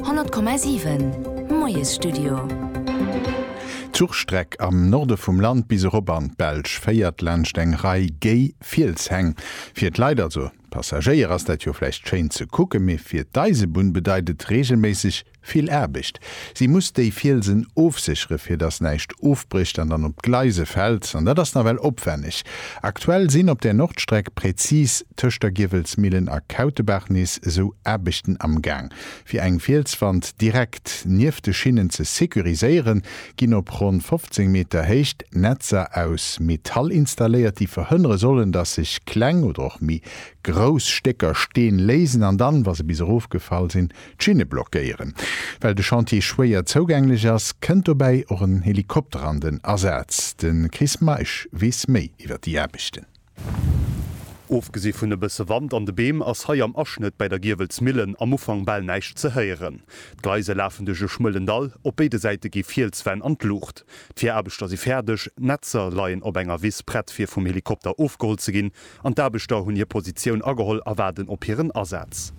100,7 Moiesstudio. D'Zuchstreck am Norde vum Land bis erop an d'Belsch féiert laanscht eng Rei géi Fielshäng. Fir d'Leit, also d'Passagéier, ass dat jo vläicht schéin ze kucken, mee fir d'Eisebunn bedeit et reegelméisseg vill Aarbecht. Si muss déi Fielsen ofsécheren, fir dass näischt ofbrécht an dann op d'Gleise fält. An dat ass nawell opwänneg. Aktuell sinn op där Nordstreck, präzis tëscht der Giewelsmillen a Kautebaach, nees esou Aarbechten am Gaang. Fir eng Fielswand direkt nieft de Schinnen ze securiséieren, ginn op ronn 15 Meter Héicht Netzer aus Metall installéiert, déi verhënnere sollen, dass sech kleng oder och méi grouss Stécker Steen léisen an dann, wa se bis erofgefall sinn, D'Schinne blockéieren, well de Chantier schwéier zougänglech ass, kënnt dobäi och en Helikopter an den Asaz. De Chris Meisch weess méi iwwer déi Aarbechten. Ofgesi vun e bësse Wand an de Beem ass hei am Aschnëtt bäi der Giewelsmillen am Ufank bal näischt ze héieren. D'Gleise lafen duerch e schmuelen Dall, op béide Säite gi Fielswänn an d'Luucht. D'Viraarbechter si fäerdeg, d'Netzer leien op enger Wiss prett fir vum Helikopter ofgeholl ze ginn, An d'Aarbechter hunn hir Positioun ageholl a waarden op hiren Asaz.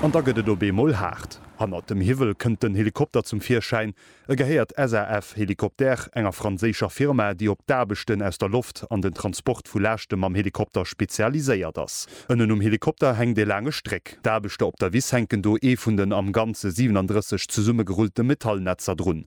An da gëtt et op eemol haart. Hannert dem Hiwwel kënnt den Helikopter zum Virschäin. E gehéiert SAF Hélicoptères, enger franséischer Firma, déi op d'Aarbechten aus der Loft an den Transport vu Laaschte mam Helikopter spezialiséiert ass. Ënnen um Helikopter hänkt ee laange Stréck. D'Aarbechter op der Wiss hänken do ee vun den am Ganze 37 zesummegerullte Metallnetzer drun.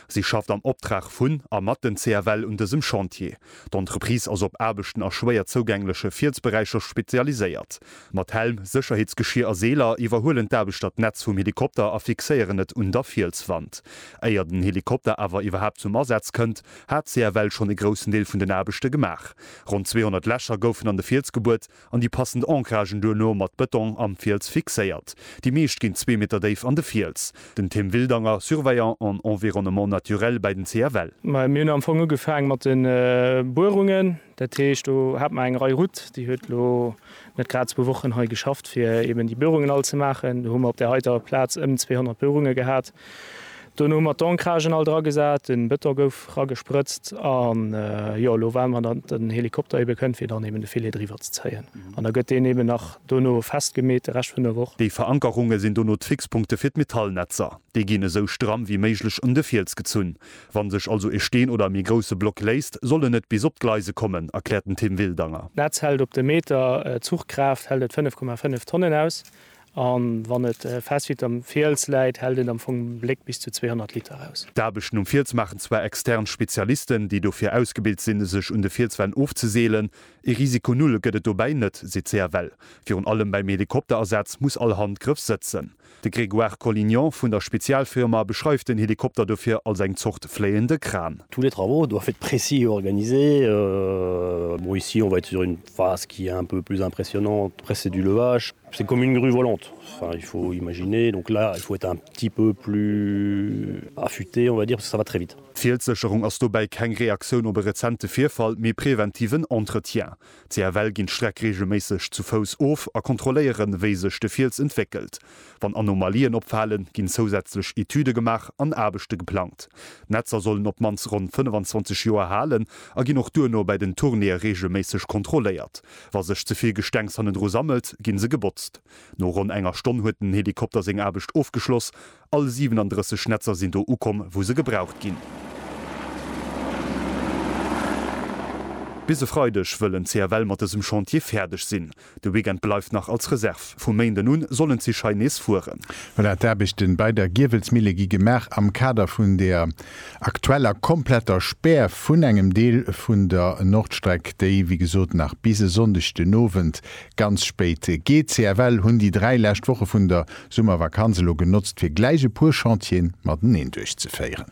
Si schafft am Optrag vun a mat den CFL un dësem Chantier. D'Entreprise ass op Aarbechten a schwéier zougängleche Fielsberäicher spezialiséiert. Mat Helm, Sécherheetsgeschier a Seeler iwwerhuelen d'Aarbechter d'Netz vum Helikopter a fixéieren et un der Fielswand. Éier den Helikopter awer iwwerhaapt zum Asaz kënnt, hat CFL schonn e groussen Deel vun den Aarbechte gemaach. Ronn 200 Lächer goufen an de Fiels gebuert an déi passend Ancragen duerno mat Bëtong am Fiels fixéiert. Déi meescht ginn zwee Meter déif an de Fiels. Den Tim Wildanger, Surveillant en environnement naturel bäi den CFL. Mir hunn am Fong ugefaang mat de Buerungen. Dat heescht, do hat mer eng Rei Route, déi huet elo net grad zwou Wochen hei geschafft, fir eeben déi Buerungen all ze maachen. Do hu mer op där heiter Plaz ëm 200 Buerunge gehat. Dono hu mer d'Ancragen all dra gesat, den Beton gouf ragesprëtzt an jo elo waarden mer dat den Helikopter eben kënnt fir dann eben de Filet driwwer ze zéien an da gëtt deen eben nach dono festgemeet de Rescht vun der Woch. Déi Verankerunge sinn dono d'Fixpunkte fir d'Metallnetzer. Déi ginn esou stramm wéi méiglech un de Fiels gezunn. Wann sech also e Steen oder e méi grousse Block léisst, soll en net bis op d'Gleise kommen, erkläert den Tim Wildanger. D'Netz hält op de Meter, d'Zuchkraaft hält et 5,5 Tonnen aus A wann et fest wéi am Fiels läit, hält et am Fong Bléck bis zu 200 Liter aus. D'Aarbechten um Fiels maachen zwar extern Spezialisten, déi dofir ausgebilt sinn, sech un de Fielswänn ofzeseelen. Ee Risiko null gëtt et dobäi net, seet d'CFL. Virun allem beim Helikopterasaz muss all Handgrëff sëtzen. De Grégoire Collignon vun der Spezialfirma beschreift den Helikopter dofir als eng Zort fléiende Kran. Tous les travaux doivent être précis et organisés. Bon, ici on va être sur une phase qui est un peu plus impressionnante, après c'est du levage. C'est une commune rue volante, enfin il faut imaginer, donc là il faut être un petit peu plus affûté on va dire, parce que ça va très vite. D'Fielssécherung ass dobäi keng Reaktioun op e rezente Virfall, mee preventiven Entretien. CFL ginn d'Streck reegelméisseg zu Fouss of a kontrolléieren, wéi sech de Fiels entwéckelt. Wann Anomalien opfalen, ginn zousätzlech Etüde gemaach an Aarbechte geplangt. D'Netzer sollen op d'mannst ronn 25 Joer halen a ginn och duerno bei den Tournéeë reegelméisseg kontrolléiert. Wa sech ze vill Gestengs hannendru sammelt, ginn se gebotzt. No ronn enger Stonn huet den Helikopter seng Aarbecht ofgeschloss. All 37 Netzer sinn do ukomm, wou se gebraucht ginn. Bis e Freideg wëllen d'CFL mat dësem Chantier fäerdeg sinn. De Weekend bleift nach als Reserv. Vum Méinden un sollen d'Zich hei nees fueren. Voilà, d'Aarbechten bei der Giewelsmille gi gemaach am Kader vun der. aktueller kompletter Spär vun engem Deel vun der Nordstreck, déi wéi gesot nach bis e Sonndeg den Owend ganz spéit geet. CFL hunn déi dräi lescht Woche vun der Summervakanz elo genotzt, fir gläich e puer Chantieren mateneen duerchzeféieren.